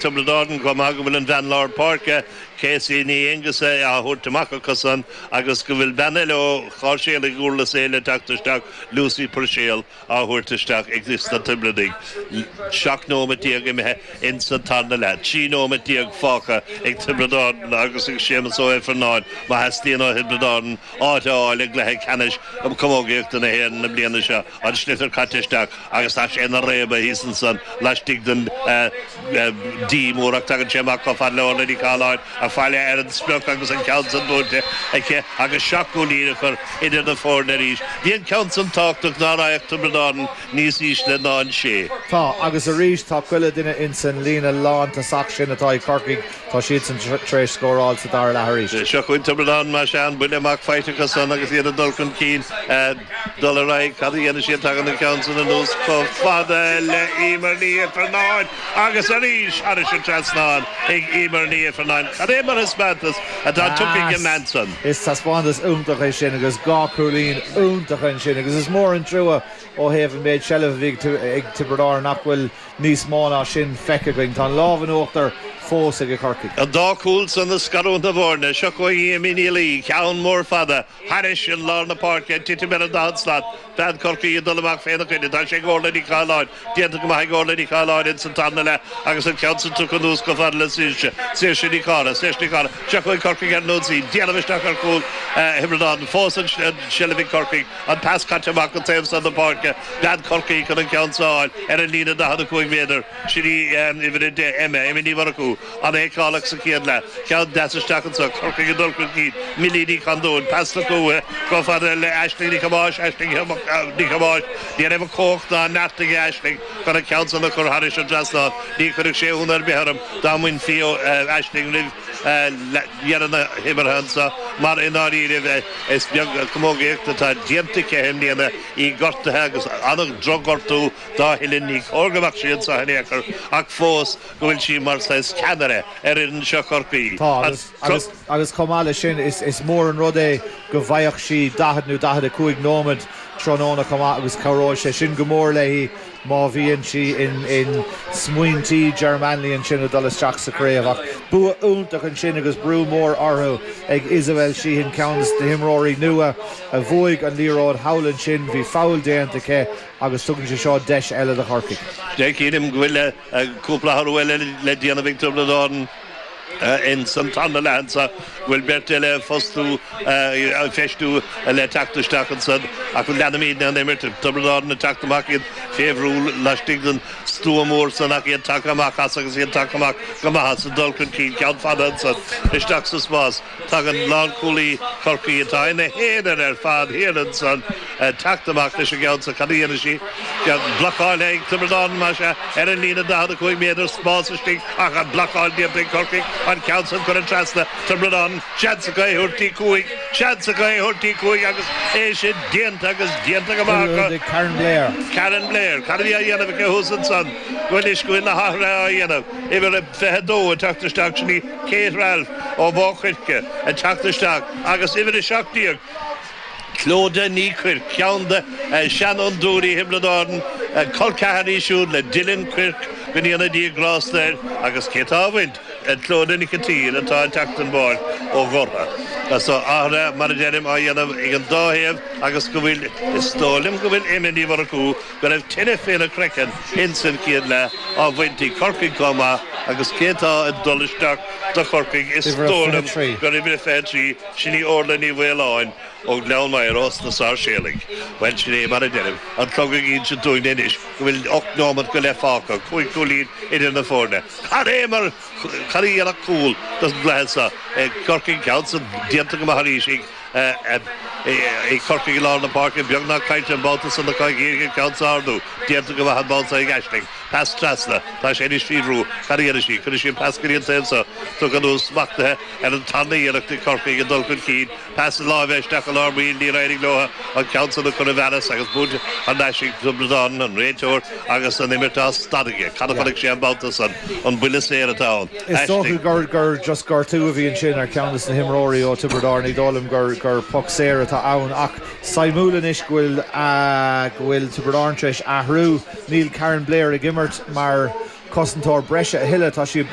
Tiobraid Árann, chomh maith go bhfuil an bhean lár páirce, Casey Ní Aonghusa, á thabhairt amach acusan agus go bhfuil bean eile ó Sháirséalaigh Dhurlas Éile ag teacht isteach, Lucy Purcell, á thabhairt isteach aiges na Tiobradaigh, seacht nóiméad déag imithe insa tarna leath, trí nóiméad déag fágtha ag Tiobraid Árann agus ag Séamus Ó hIfearnáin má theastaíonn ó Thiobraid Árann áit a fháil i gcluiche ceannais Camógaíochta na hÉireann na bliana seo. an sliotar caite isteach agus tá sé ina réabadh thíos ansan laistigh den D mór ach tagann sé amach chomh fada le hOrlaith Ní Chathalláin, ag faire ar an sprioc agus an ceann san buailte aici agus seacht gcúilín a chur idir na foirne arís. Bhí an ceann san tábhachtach ná raghadh Tiobraid Árann níos ísle ná an sé. Tá, agus arís tá chuile dhuine insan líne lántosach sin atá ag Corcaigh, tá siadsan tar éis scóráil sa dara leath arís. Seo chugainn Tiobraid Árann, más ea, an buille amach faighte acu san agus iad ag dul chun cinn. dul ar aghaidh. Cad a dhéanann siad? Tagann an ceann san anuas chomh fada le Eimear Ní Ifearnáin agus arís thairis an trasnán ag Eimear Ní Ifearnáin. Cad é mar thaispeántas atá tugtha ag an mbean san? Is taispeántas iontach é sin agus dhá chúilín iontacha ansin agus is mór an trua ó thaobh an méid seilbh a bhí ag Tiobraid Árann nach bhfuil níos mó ná sin feicthe againn. Tá an lámh in uachtar fós ag Corcaigh. An dá chúl san ag scarúint na bhfoirne. Seo chugainn Amy Ní Laoi, ceann mór fada. Thairis an lár na páirce, ag titim ar an daichead slat, bean Chorcaí ag dul amach féna coinne. Tá sé ag Orlaith Ní Chathalláin déanta go maith ag Orlaith Ní Chathalláin ins an tarna leath agus an ceann san tugtha anuas chomh fada le Saoirse. Saoirse Nic Cárthaigh. Saoirse Nic Cárthaigh. Seo chugainn Corcaigh ar an ionsaí. Déanamh isteach ar chúl Thiobraid Árann. Fós an tseilbh ag Corcaigh. An pas caite amach go taobh san na páirce. Bean Chorcaí chun an ceann san a fháil ar an líne 45 méadar. Sin í uimhir a deich, Emma. Emma Ní Mhurchú. An-fheiceálach sa chéad leath, ceann deas isteach anseo, Corcaigh ag dul chun cinn, Millie Ní Chondúin, pas na cúiche chomh fada le Aisling Ní Thomáis, Aisling Ní Thomáis, ní raibh an chumhacht ná an neart aige Aisling chun an ceann san a chur thairis an trasnán, ní chuirfeadh sé ionadh ar bith orm dá mbainfí Aisling roimh dheireadh na himeartha anseo mar i ndáiríre is beag camógaíocht atá déanta aici i mbliana, í gortaithe agus an-drochghortú dá huillinn, ní cóir go mbeadh sí anseo in aon chor ach fós. go bhfuil sí mar saghas ceannaire ar fhoireann seo Chorcaí. Tá, agus, agus chomh maith leis sin, is, is mór an rud é go bhfaigheadh sí 40 nó 45 nóiméad tráthnóna chomh maith agus cabhróidh sé sin go mór léi má bhíonn sí in, in smaointí Ger Manley ansin ag dul isteach sa chraobh. Ach bua iontach ansin agus brú mór orthu ag Isobel Sheehan, ceann de na himreoirí nua a bhuaigh an liathróid thall ansin, bhí foul déanta aici agus tugann sé seo deis eile do Chorcaigh. Déarfainn go bhfuil. Cúpla athrú eile le déanamh ag Tiobraid Árann ins an tarna leath anso go bhfuil beirt eile á fostú, á feistiú le teacht isteach ansan ach leanfaimídne an imirt. Tiobraid Árann ag teacht amach, iad fé bhrú laistigh den stua mór san ach iad tagtha amach as agus iad tagtha amach go maith as ag dul chun cinn ceann fada anso isteach sa spás. Tagann lánchúlaí Chorcaí atá ina haonar ar fad thiar ansan ag teacht amach leis an gceann seo. Cad a dhéanfaidh sí? Beag blocáil ag Tiobraid Árann mar seo ar an líne 45 méadar spás istigh ach an blocáil déanta ag Corcaigh an ceann san cuireadh trasna Tiobraid Árann. Seans acu é a thabhairt dtí cúig! Seans acu é a thabhairt dtí cúig agus é sin déanta agus déanta go maith ag Karin Blair. Cad a bhí á dhéanamh aici thuas ansan? Go bhfuil is go bhfuil na hathruithe á dhéanamh. Uimhir a 22 ag teacht isteach sin í. Kate Ralph ó Mhaigh Coirce ag teacht isteach agus uimhir a seacht déag, Clodagh Ní Chuirc, ceann de sheanfhondúirí Thiobraid Árann, col ceathar í siúd le Dylan Quirke, go ndéana Dia grásta air agus cé tá á bhaint ach Clodagh Nic an tSaoir atá ag teacht den bpáirc ó Lothra, so athruithe, mar a deirim, á dhéanamh ag an dá thaobh agus go bhfuil, is dóigh liom go bhfuil, Emma Ní Mhurchú, go raibh tine faoina craiceann ins an chéad leath á bhaint ag Corcaigh chomh maith agus cé tá ag dul isteach do Chorcaigh is dóigh liom gur uimhir a 23, sin í Orla Ní Mhaoláin ó Ghleann Maghair ós na Sáirséalaigh. Bhuel sin é mar a deirim, an clog ag insint dúinn anois go bhfuil ocht neomat go leith fágtha, cúig cúilín idir na foirne. Cad é mar, cad a dhéanfadh cúl don gcluiche seo, Corcaigh, ceann san déanta go maith arís ag. Ag Corcaigh i lár na páirce beagnach caillte an babhta san ach d'éirigh léi an ceann a ardú. Déanta go maith an babhta seo ag Aisling. Pas trasna. Tá sé anois faoi bhrú. Cad a dhéanfaidh sí? Cuirfidh sí an pas go dtí an taobh seo. Tugtha anuas smachtaithe ar an tarna iarracht ag Corcaigh ag dul chun cinn. Pas láimhe isteach i lár baill. Níor éirigh leo an ceann san a chur i bhfearas agus buaite ar ais ag Tiobraid Árann, an réiteoir agus an imirt á stad aige. Cad a chonaic sé an babhta san? An buille saor atá ann? Is dócha gur, gur just gortú a bhí ansin ar cheann de na himreoirí ó Tiobraid Árann, ní dóigh liom gur, gur poc saor atá ann ach suimiúil anois go bhfuil, go bhfuil Tiobraid Árann tar éis athrú, níl Karin Blair ag imirt mar cosantóir breise a thuilleadh, tá sí.